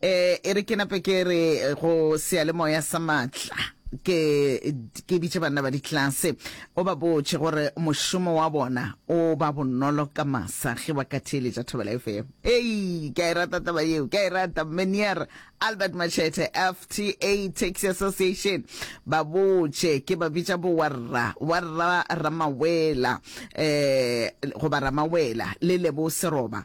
Eh, e re ke nape ke re eh, go seyalemoya sa maatla ke ke bitše banna ba ditlase o ba botše gore mošomo wa bona o ba bonolo ka masa ge ba ka theeletša thobela fm ei ke a e rata taba yeo ke a e rata menier albert machete fta taxi association ba botše ke ba bitša bo warra warra ramawela eh goba ramawela le lebo seroba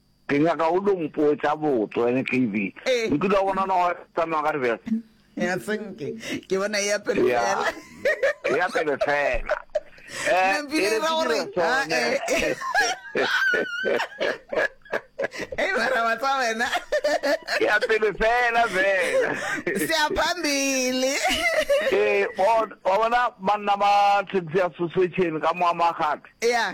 Ke nyaka o lo mpotša botso, NKV. Ee. Nkile wa bona noga e tsamaya ka dibeke? Ya senke, ke bona e ya pele Ya. fela. E ya pele fela. Eh, Mme Pina e e re ra gore, ke dire sone. Ei, mara wa tsa wena. E ya pele fela fela. Se ya phambili. Ee, wa wa bona banna ba taxi association ka moa magate. Ya.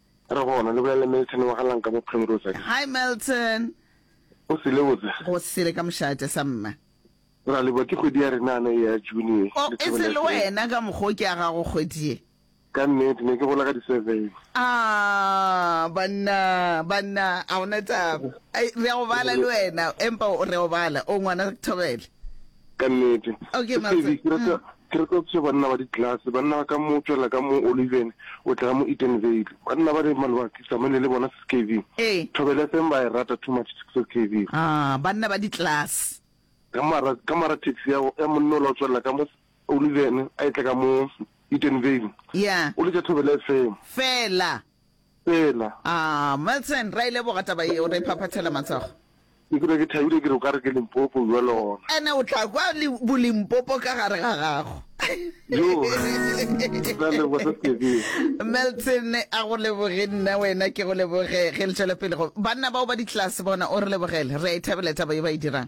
A re gona le bolele Milton wa ga lang ka mo Primrose a re. Hi Milton. Go sele botse? Go sele ka mošate sa mma. Ra leboa ke kgwedi ya rena ana e ya June ye. Oh e se le wena ka mokgo ke a gago kgwedi ye. Ka nnete ne ke gola ka di seven. Aah banna banna a hona taba. Re a go bala le wena empa re a go bala o ngwana Thobela. Ka nnete. Okay, Motse. Sebi, ke rata, ke rata go thuša banna ba ditlelase, banna ba ka mo tšwela ka mo Oliven, o tla mo Edenvale. Banna ba le maloba ke samane le bona, Sis KV. Ee. Thobela FM ba e rata too much, Sis KV. Ah, banna ba ditlelase. Ka mara, ka mara taxi ya, ya monna o la o tšwelela ka mo Oliven, a e tla ka mo Edenvale. Yeah. O letša Thobela FM. Fela. Tsela. Aah Milton, ra e leboga taba yeo, re phaphathela matsogo. Ke dula ke thabile ke re o ka re ke Limpopo bjale gona. Ene o tla kwa Bolimpopo ka gare ga gago. Yoo, ra leboga sa Sebele. Milton a go leboge nna wena ke go leboge ge le tšwela pele go banna bao ba ditlase bona o re lebogele re a e thabela taba ye ba e dirang.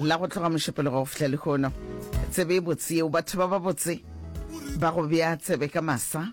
La go tloga mošupologo go fihla lehono, tsebe e botse yeo, batho ba babotse ba go bea tsebe ka masa.